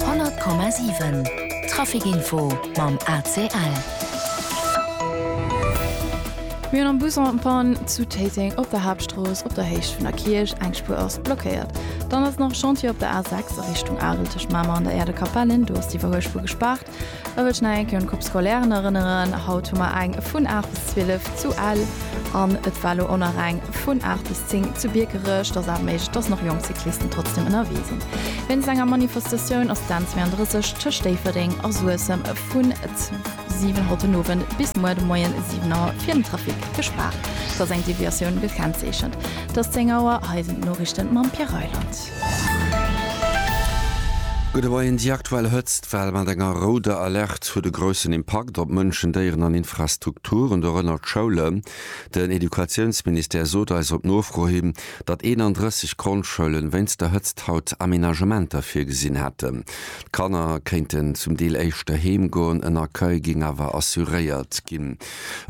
100,7 Traficinfo mam ACL. Mir hunn am Bus en Panne zu Téiteng op der Haaptstrooss op der Héicht vun der Kierch. Eng Spuer ass blockéiert. Dann ass nach Chantier op der A6 a Richtung Arel tëscht Mamer an der Äerdekapellen. Do ass d'Iwwerhuelspur gespaart. Ech wëll nach eng Kéier un d'Groupe Scolaire erënneren. Haut hu mer eng vun 8 bis 12 zu Ell an et war elo och nach eng vun 8 bis 10 zu Biekerech. Et ass awer méiglech, dass nach jonk Cyclisten trotzdem ënnerwee sinn. Wéinst enger Manifestatioun ass d'N 32 tëscht Déifferdeng a Suessem vun 7 Auer haut den Owend bis muer de Moien 7 Auer fir den Trafic gespaart. Et ass eng Deviatioun gekennzeechent. Et ass 10 Auer. Hei sinn d'Noriichten mam Pierre Reyland. Gudde Moien, Déi aktuell Hëtztwell mat enger rouder Alerte huet e groussen Impakt op Mënschen, Déieren an Infrastrukturen, dorënner d'Schoulen. Den Educatiounsministère sot eis op Nofro hin, datt 31 Grondschoulen wéinst der Hëtzt haut Amenagementer virgesinn hätten. D'Kanner kéinten zum Deel éischter heem goen, en Accueil géing awer assuréiert ginn.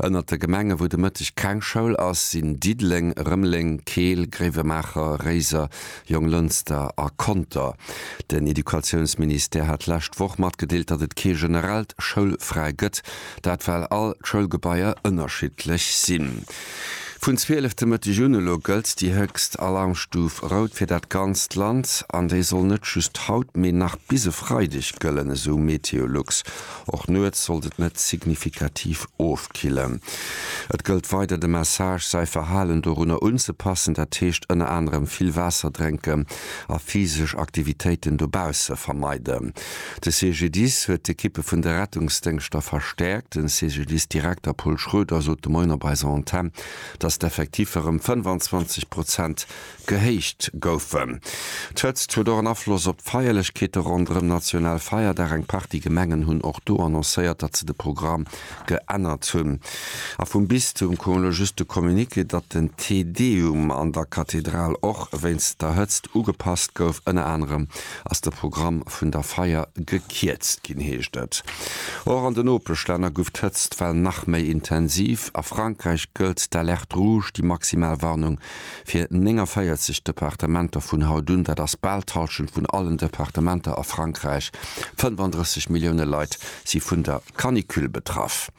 Ënnert de Gemenge wou de Mëtteg keng Schoul ass, sinn Diddeleng, Rëmeleng, Keel, Gréiwemaacher, Réiser, Jonglënster a Conter. Den Educatiounsministère hat d'lescht Woch matgedeelt, datt et kee generellt Schoulfräi gëtt, dat well all d'Schoulgebaier ënnerschiddlech sinn. Vun 12 de Mëtteg un elo gëllt déi héchst Alarmstuf rout fir dat ganzt Land an déi soll net just haut, mee nach bis e Freideg gëllen, esou MeteoLux. Och nuets sollt et net signifikativ ofkillen. Et gëllt weider de Message, säi Verhalen dorunner unzepassen, dat heescht ënner anerem vill Waasser drénken a physesch Aktivitéiten dobausse vermeiden. De CGDIS huet d'Ekippe vun de Rettungsdéngschter verstäerkt. Den CGDIS-Direkter Paul Schroeder sot de Moien op eiser Antenn, datt d'Effektiffer ëm 25 Prozent Gehéicht goufen. D'Hëtzt huet och en Afloss op d'Feierlechkeete ronderëm Nationalfeierdag. Eng Partie Gemengen hunn och do annoncéiert, datt se de Programm geännert hunn. A vum Bistum koum elo just de Communiqué, datt den Te Deum an der Kathedral och wéinst der Hëtzt ugepasst gouf. Ënner anerem ass de Programm vun der Feier gekierzt ginn, heescht et. Och an den Nopeschlänner guff d'Hëtztwell nach méi intensiv. A Frankräich gëllt d'Alerte rouge, déi maximal Warnung fir 49 Departementer vun haut un, dat ass bal d'Hallschent vun allen Departementer a Frankräich, 35 Millioune Leit si vun der Canicule betraff.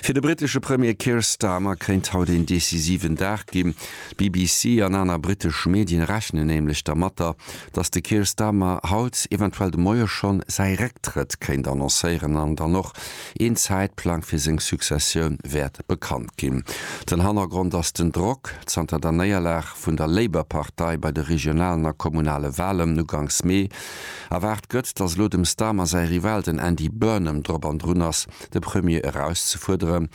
Fir de brittesche Premier Keir Starmer kéint haut een decisiven Dag ginn. D'BBC an aner brittesch Medien rechnen nämlech dermatter, datt de Keir Starmer haut, eventuell de Moie schonn, säi Récktrëtt kéint annoncéieren an dann och Een Zäitplang fir seng Successioun wäert bekannt ginn. Den Hannergrond ass den Drock zanter der Néierlag vun der Labour-Partei bei de regionalen a kommunale Walen uganks Mee. Erwaart gëtt, datt elo dem Starmer säi Rival, den Andy Burnham, drop an drun ass, de Premier erauszefuerderen.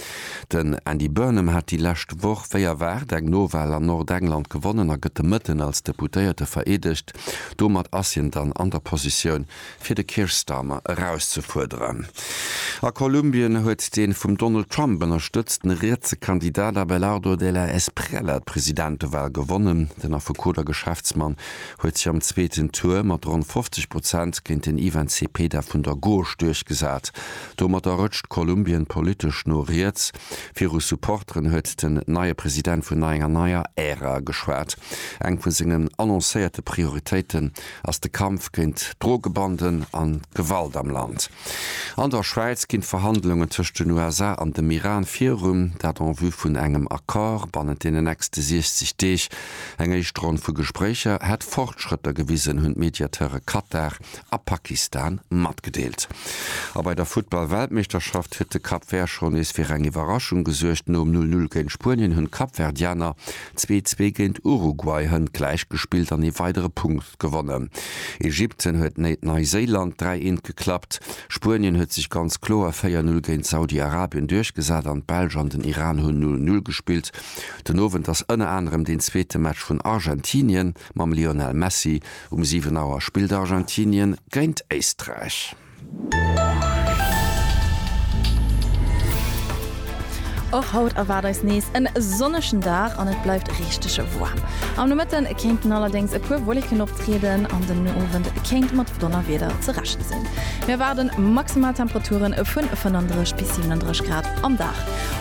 Den Andy Burnham hat déi lescht Woch wéi erwaart eng Nowal an Nordengland gewonnen a gëtt de Mëtten als Deputéierte vereedegt. Domat ass hien dann an der Positioun, fir de Keir Starmer erauszefuerderen. A Kolumbien huet dee vum Donald Trump ënnerstëtzten rietse Kandidat Abelardo de la Espriella d'Presidentewal gewonnen. Den Affekot a Geschäftsmann huet sech am zweeten Tour mat ronn 50 Prozent géint den Ivan Cepeda vun der Gauche duerchgesat. Domatter rëtscht Kolumbien politesch no riets. Viru Supporteren huet den neie President vun enger neier Ära geschwat. Eng vu sengen annoncéierte Prioritéite ass de Kampf géint d'Drogebanden an d'Gewalt am Land. An der Schwäiz ginn d'Verhandlungen tëscht den USA an dem Iran virun, dat en vue vun engem Accord bannent deenen nächste 60 Deeg. Eng éischt Ronn vu Gespréicher hätt Fortschrëtter gewisen, hunn d'Mediateure Katar a Pakistan matgedeelt. A bei der Futtball-Weltmeeschterschaft huet de Cap Vert schonn nees fir eng Iwwerraschung gesuergt. Nom Null-Null géint Spuenien hunn d'Kapverdianer zwee zwee géint Uruguay hënt gläich gespillt an ee weidere Punkt gewonnen. Ägypten huet néit Neiséiland dräi eent geklappt. Spuenien huet sech ganz kloer véier null géint Saudi-Arabien duerchgesat an d'Belsch an den Iran hunn null null gespillt. Den Owend ass ënner anerem deen zweete Match vun Argentinien mam Lionel Messi. Um 7 Auer spillt Argentinien géint Éisträich. Och haut erwaart eis nees en sonnegen Dag an et bleift richteg woarm. Am Nomëtten kéinten allerdéngs e puer Wolleken optrieden an den Owend kéint mat Donnerwieder ze rechne sinn. Mir erwaarden maximal Temperature vun 35 bis 37 Grad am Dag.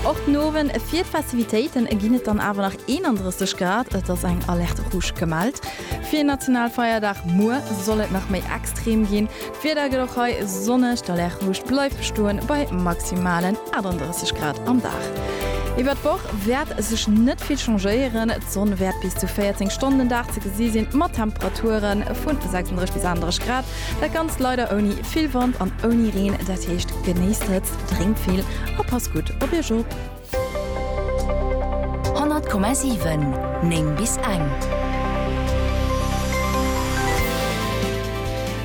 Och den Owend fir d'Festivitéiten ginn et dann awer nach 31 Grad. Et ass eng Alerte Rouge gemellt. Fir een Nationalfeierdag muer soll et nach méi extrem ginn. D'Wieder gëtt och hei sonneg, d'Alertluucht bleift bestoen bei maximalen 38 Grad am Dag. Iwwert d'Woch wäert sech net vill changéieren, d'Sonn wäert bis zu 14 Stonnen den Dag ze gesi sinn, mat Temperature vun 36 bis 38 Grad. Dat ganzt leider ouni vill Wand an ouni Reen, dat heescht genéisst d'Hëtzt, drénkt vill a passt gutt op Iech op. 100,7 9 bis eng.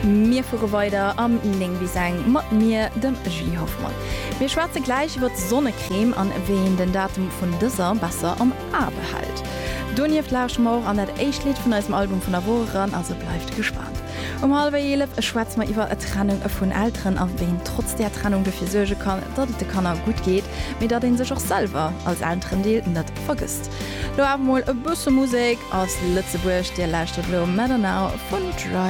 Mir fuere weider am 9 bis eng mat mir, dem Julie Hoffmann. Mir schwätze gläich iwwert d'Sonnecrème an wéi een den Datum vun dëser besser am A behält. Donieft lauschte mer och an dat éischt Lidd vun eisem Album vun der Woch eran, also bleift gespaant. Um hallwer eelef schwätze mer iwwer d'Trennung vun Elteren a wéi een trotz där Trennung dofir suerge kann, datt et de Kanner gutt geet, mee datt een sech och selwer als Elterendeel net vergësst. Lo awer mol e bësse Musek aus Lëtzebuerg, Dir lauschtert elo Matter Now vun Dry.